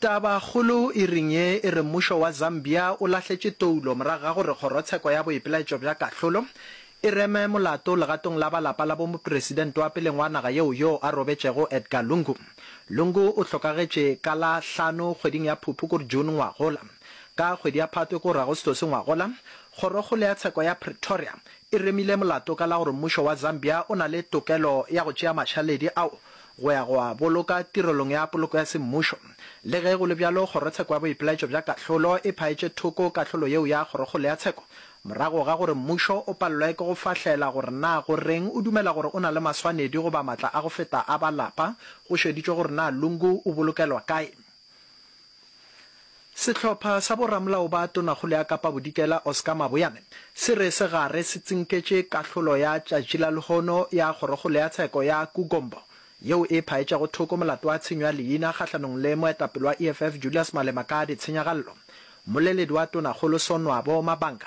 Tabakgolo e reng ye e re mmušo wa Zambia o lahletše toulo morago ga gore kgorotsheko ya boipelaetšo bja kahlolo e reme molato legatong la ba lapa la bomopresidente wa peleng wa naga yeo yoo a robetšego Edgar Lungu. Lungu o hlokagetše ka la hlano kgweding ya Phuphu kor June ngwagola. Ka kgwedi ya Phatwe kor Agostose ngwagola, kgorokgolo ya tsheko ya Pretoria e remile molato ka la gore mmušo wa Zambia o na le tokelo ya go tšea mašaledi ao go ya go a boloka tirelong ya poloko ya semmušo. Le ge go le bjalo, Kgorotsheko ya Boipelaetšo bja Kahlolo e phaetše thoko kahlolo yeo ya Kgorokgolo ya Tsheko morago ga gore mmušo o palelwe ke go fahlela gore na go reng o dumela gore o na le maswanedi goba matla a go feta a ba lapa go šeditšwe gore na Lungu o bolokelwa kae. Sehlopha sa boramolao ba tonakgolo ya Kapa Bodikela Oscar Maboyane se re segare se tsinketše kahlolo ya tšatši la lehono ya kgorokgolo ya tsheko ya Kugombo yeo e phaetšago thoko molato wa tshenyo ya leina kgahlanong le moetapele wa EFF Julius Malema ka ditshenyagallo. Mmoleledi wa tonakgolo Sonwabo Mabanga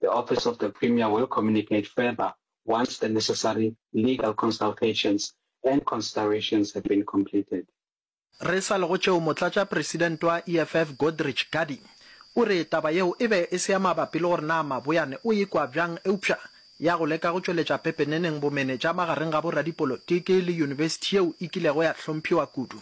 The Office of the Premier will communicate further once the necessary legal consultations and considerations have been completed. Re sa le go tšeo, Motlatšapresidente wa EFF Godrich Gadi o re taba yeo e be e se ya mabapi le gore na Maboyane o e kwa bjang eupša ya go leka go tšweletša pepeneneng bomenetša magareng ga boradipolotiki le yunibesithi yeo e kilego ya hlomphiwa kudu.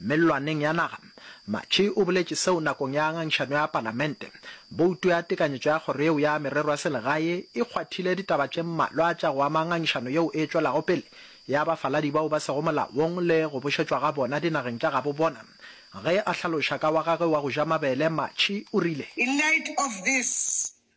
Mellwaneng ya naga, Matjhi o boletše seo nakong ya ngangišano ya Palamente. Bouto ya tekanyetšo ya kgoro yeo ya merero ya selegae e kgwathile ditaba tše mmalwa tša go ama ngangišano yeo e tšwelago pele ya bafaladi bao ba sego molaong le go bušetšwa ga bona dinageng tša gabo bona. Ge a hlaloša ka wa gagwe wa go ja mabele, Matjhi o rile. In light of this,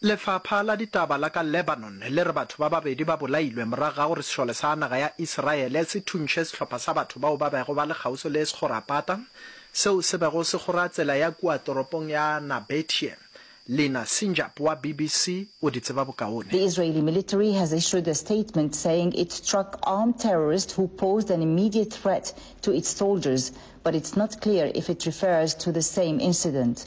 Lefapha la ditaba la ka Lebanon le re batho ba babedi ba bolailwe morago ga gore sešole sa naga ya Isiraele se thuntšhe sehlopha sa batho bao ba bego ba le kgauswi le sekgorapata seo se bego se kgora tsela ya kua toropong ya Nabetie. Lina Sinjap wa BBC o di tseba bokaone. The Israeli military has issued a statement saying it struck armed terrorists who posed an immediate threat to its soldiers, but it's not clear if it refers to the same incident.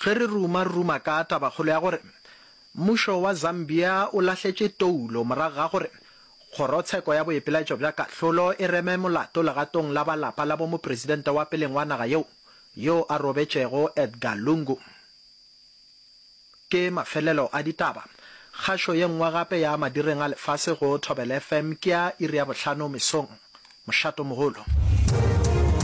Ge re ruma, re ruma ka tabakgolo ya gore mmušo wa Zambia o lahletše toulo morago ga gore Kgorotsheko ya Boipelaetšo bja Kahlolo e reme molato legatong la ba lapa la bomopresidente wa peleng wa naga yeo yo a robetšego Edgar Lungu. Ke mafelelo a ditaba. Kgašo ye nngwe gape ya Madireng a Lefase go Thobela FM ke ya iri ya bohlano mesong. Mošato mogolo.